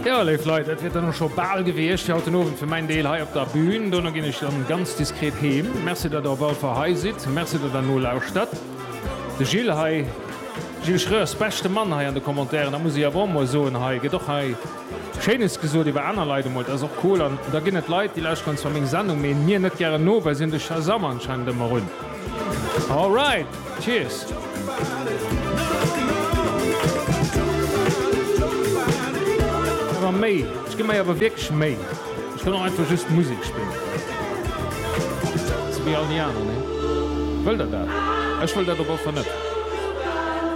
Jo, léif Leit, dat wier dann och scho bal gewiescht fir haut den Owend, fir mäin Deel hei op der Bühn. Dono ginn ech dann ganz diskret heem. Merci, datt der op all Fall hei sidd. Merci, datt der nolauschtert. De Gilles hei, Gilles Schreurs, beschte Mann hei an de Commentairen, dat muss ech awer och emol soen hei, gëtt och hei Schéines gesot iwwer aner Leit emol, dat ass och cool. An da ginn et Leit, déi lauschteren zwar meng Sendung, mee mir net gären no, well si hunn de Shazam anscheinend ëmmer un. All right, cheers! Ëmmer méi, ech ginn mei awer wierklech Méi. Ech wëll och einfach just Musek spillen. Sou wéi all déi aner, nee? Wëllt der dat? Ech wëll dat op allefall net.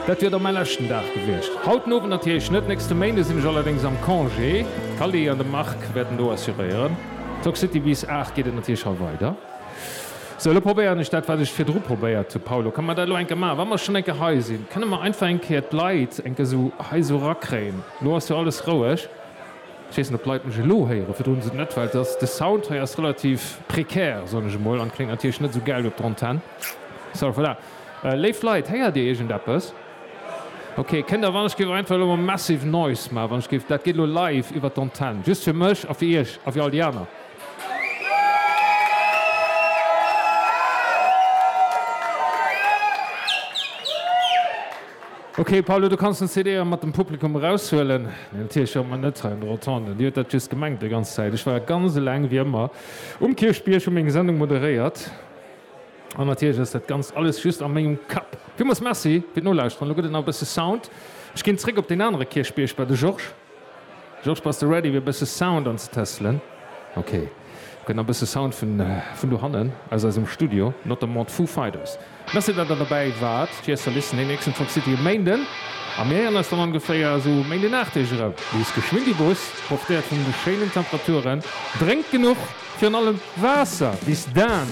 Dat wier da mäi leschten Dag gewiescht. Haut den Owend natierlech net. Nächste Méinde sinn ech allerdéngs am Congé. D'Cally an de Marc wäerten do assuréieren. D'Soxcity bis 8 geet et natierlech hei weider. Sou, elo probéieren ech dat, wat ech virdru probéiert hu. Paulo, Kënne mer dat elo eng Kéier maachen, wa mer schonn eng Kéier hei sinn? Kënne mer einfach eng Kéier d'Leit eng Kéier esou hei esou erakréien? Elo ass jo alles roueg. Ech weess net, ob d'Leit mech elo héieren. Virdru hunn se et net, well et ass, de Sound hei ass relativ prekär, soen ech emol, an kléngt natierlech net esou gäil op der Antenn. Sou, voilà. Léif Leit, héiert Dir iergendeppes? Ok. Kënnt Der, wann ech géif einfach elo emol massive noise maachen, wann ech géif, dat geet elo live iwwer d'Antenn, just fir mech a fir Iech a fir all déi aner. Ok Paulo, du kanns den CD mat dem Publikum eraushuelen. Neen, natierlech hu mer net hei an der Rotonde, Dir huet dat just gemengt déi ganz Zäit. Ech war ganz eleng, wéi ëmmer, um Kierchbierg, hu meng Sendung moderéiert an natierlech ass dat Ganzt alles just a mengem Kapp. Villmools Merci fir d'Nolauschteren. Elo gëtt et nach e bësse Sound. Ech ginn zréck op deen anere Kierchbierg bei de Georges. Georges, bass de ready fir e bësse Sound anzetestelen? Ok, gëtt nach e bësse Sound vun dohannen aus eisem Studio, notamment d'Foo Fighters. Merci dat der dobäi waart fir eis ze listennen. Deen nächsten Truck City e Méinden a mir héieren eis dann ongeféier esou e Méinden 8 Deeg erëm. Liest geschwinn déi Bus, profitéiert vun de schéinen Temperaturen, drénkt genuch, virun allem Waasser. Bis dann!